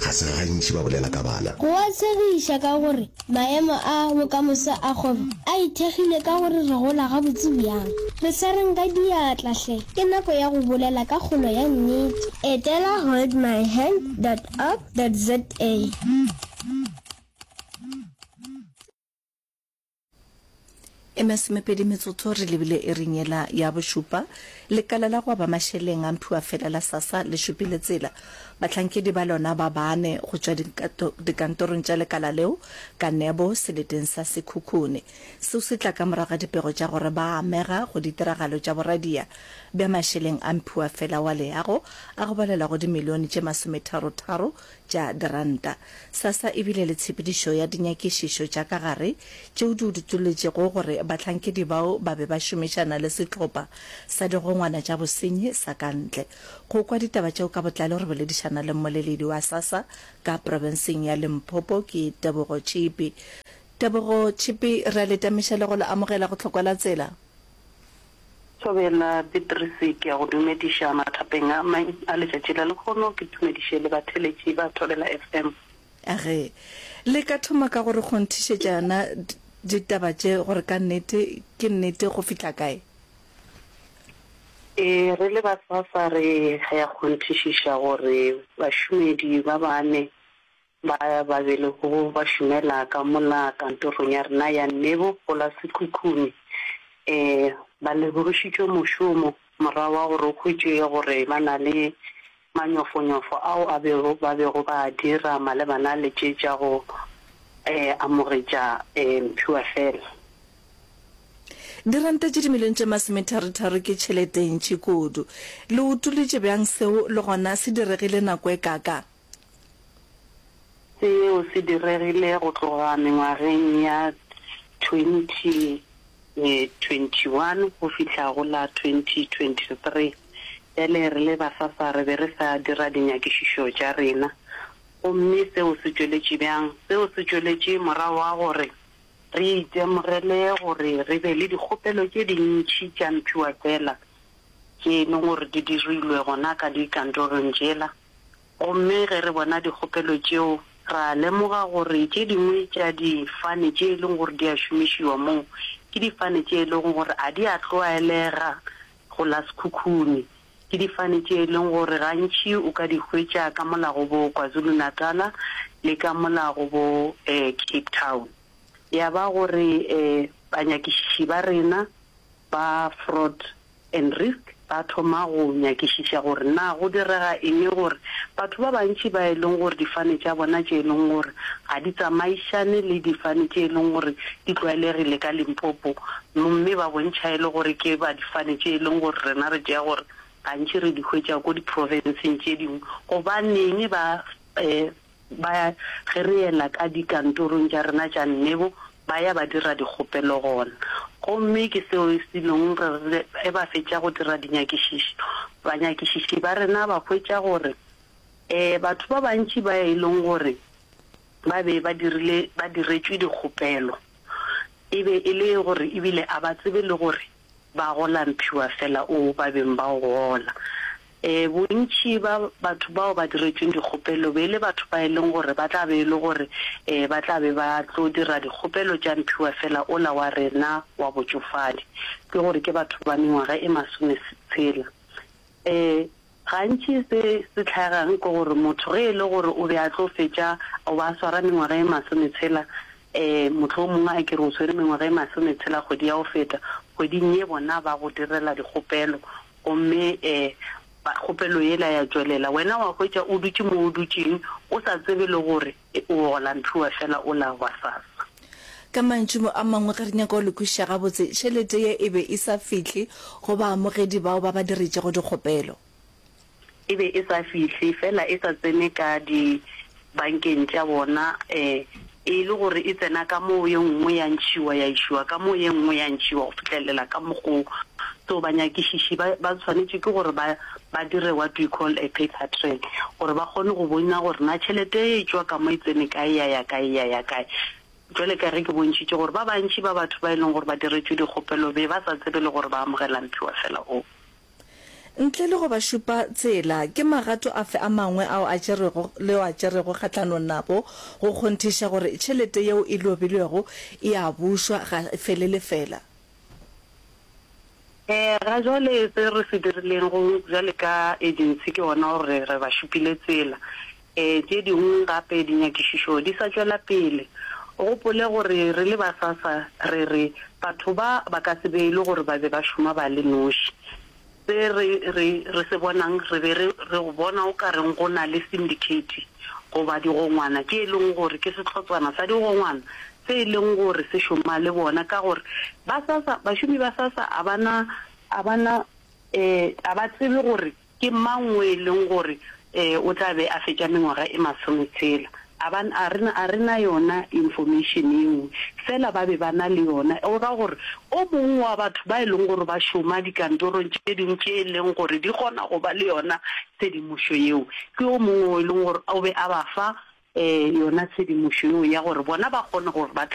Ga se gantši ba bolela ka bana. Go a tshegiša ka gore maemo a bokamoso a kgwebo a ithekgile ka gore re gola gabotse bjang. Re swareng ka diatla hle, ke nako ya go bolela ka kgolo ya nnete. Etela holdmyhand dot org dot za. E masomepedi metsotso re lebile e re nyela ya bošupa. Lekala la go aba mašeleng a mphiwa fela la sasa le šupile tsela. Bahlankedi ba lona ba bane go tšwa dikantorong tša lekala leo ka nebo seleteng sa Sekhukhune. Seo se tla ka morago ga dipego tša gore ba amega go ditiragalo tša boradia bja mašeleng a mphiwa fela wa leago a go balelwa go dimilione tše masometharo-tharo tša diranta. Sassa e bile le tshepedišo ya dinyakišišo tša ka gare tšeo di utoletšego gore bahlankedi bao ba be ba šomišana le sehlopha sa digongwana tša bosenyi sa ka ntle. Go kwa ditaba tšeo ka botlalo re boledišana le mmoleledi wa Sassa ka profenseng ya Limpopo ke Tebogo Tšhipi. Tebogo Tšhipi, re a le tamiša le go le amogela go Tlhokwelatsela. Thobela Petrisi, ke a go dumediša mathapeng a mang a letšatši la lekgono, ke dumediše le batheletši ba Thobela FM. Ge le ka thoma ka go re kgonthišetša yona ditaba tše gore ka nnete ke nnete go fihla kae? Ee, re le ba SASA re ya kgonthišiša gore bašomedi ba bane Ba ba bilego ba šomela ka mola kantorong ya rena ya Nebo go la Sekhukhune ba lebogišitšwe mošomo morago ga gore go hwetšege gore ba na le manyofonyofo ao a bego ba bego ba a dira malebana le tše tša go amogetša mphiwa fela. Diranta tše dimilione tše masometharotharo ke tšhelete e ntši kudu. Le utollitše bjang seo le gona se diregile nako e kaakang? Seo se diregile go tloga mengwageng ya 2021 go fihla go la 2023. Bjale re le Basasa re be re sa dira dinyakišišo tša rena. Gomme seo se tšweletše bjang? Seo se tšweletše morago ga gore re itemogele gore re be le dikgopelo tše dintši tša mphiwafela tše e lego gore di dirilwe gona ka dikantorong tšela. Gomme ge re bona dikgopelo tšeo, ra lemoga gore tše dingwe tša difane tše e lego gore di a šomišiwa moo ke difane tše e lego gore ga di a tlwaelega go la sekhukhune. Ke difane tše e lego gore gantši o ka di hwetša ka mo la go bo KwaZulu-Natal le ka mo la go bo Cape Town. Ya ba gore banyakišiši ba rena ba Fraud and Risk ba thoma go nyakišiša gore na go direga eng gore batho ba bantši ba e leng gore difane tša bona tše e leng gore ga di tsamaišane le difane tše e leng gore di tlwaelegile ka Limpopo mme ba bontšha e le gore ke ba difane tše e leng gore rena re tšea gore gantši re di hwetša ko di-province-ng tše dingwe, gobaneng ba Ba ge re yela ka dikantorong tša rena tša nnebo, ba ya ba dira dikgopelo gona. Gomme ke seo e selong re re ge ba fetša go dira dinyakišišo, banyakišiši ba rena ba hwetša gore ee, batho ba bantši ba e leng gore ba be ba dirile ba diretšwe dikgopelo e be e le gore ebile a ba tsebe le gore Ba gola mphiwa fela o ba beng ba o gola. E, bontši ba batho bao ba diretšweng dikgopelo be e le batho ba e leng gore ba tla be e le gore e ba tla be ba tlo dira dikgopelo tša mphiwa fela ola wa rena wa botšofadi, ke gore ke batho ba mengwaga e masome tshela. Ee, gantši se se hlagang ke gore motho ge e le gore o be a tlo fetša o ba a swara mengwaga e masometshela, ee, mohlomongwe a ke re o swere mengwaga e masometshela kgwedi ya go feta, kgweding ye bona ba go direla dikgopelo gomme ee, kgopelo yela ya tšwelela. Wena wa hwetša o dutše mo o dutšeng o sa tsebe le gore E O gola Nthoe fela o la wa sasa. Ka mantšumo a mangwe ge re nyaka go le kwešiša gabotse, tšhelete ye e be e sa fihle go baamogedi bao ba ba diretšego dikgopelo. E be e sa fihle, fela e sa tsene ka dibankeng tša bona, e e le gore e tsena ka mo ye nngwe ya ntšhiwa ya išiwa ka mo ye nngwe ya ntšhiwa go fihlelela ka mokgo o. So banyakišiši ba ba swanetše ke gore ba. ba dire what we call a paper trail gore ba kgone go bonya gore na tšhelete e tšwa ka mo e tsene kae ya ya kae ya ya kae. Jwale ka ge ke bontšhitše gore ba bantši ba batho ba e leng gore ba diretšwe dikgopelo be ba sa tsebe le gore ba amogela mphiwa fela o. Ntle le go ba šupa tsela, ke magato afe a mangwe ao a tšerwego le ao a tšerwego kgahlanong nabo go kgonthiša gore tšhelete yeo e lobilwego e a bušwa ga e fele lefela? Ee, ga jwale se re se dirileng go bjale ka Agency ke gona gore re ba šupile tsela. Ee, tše dingwe gape dinyakišišo di sa tšwela pele. O gopole gore re le ba SASSA re re batho ba ba ka se beilwe gore ba be ba šoma ba le noši. Se re re re se bonang re be re re go bona o ka reng go na le syndicate goba digongwana tše e leng gore ke sehlotswana sa digongwana se e leng gore se šoma le bona ka gore ba SASSA, bašomi ba SASSA a ba na, a ba na, a ba tsebe gore ke mang o e leng gore o tla be a fetša mengwaga e masometshela. A ba, a re, a re na yona information yeo, feela ba be ba na le yona o ra gore o mongwe wa batho ba e leng gore ba šoma dikantorong tše dingwe tše e leng gore di kgona go ba le yona Tshedimošo yeo ke yo mongwe o e leng gore o be a ba fa yona, tshedimošo yeo ya gore bona ba kgone gore ba tle.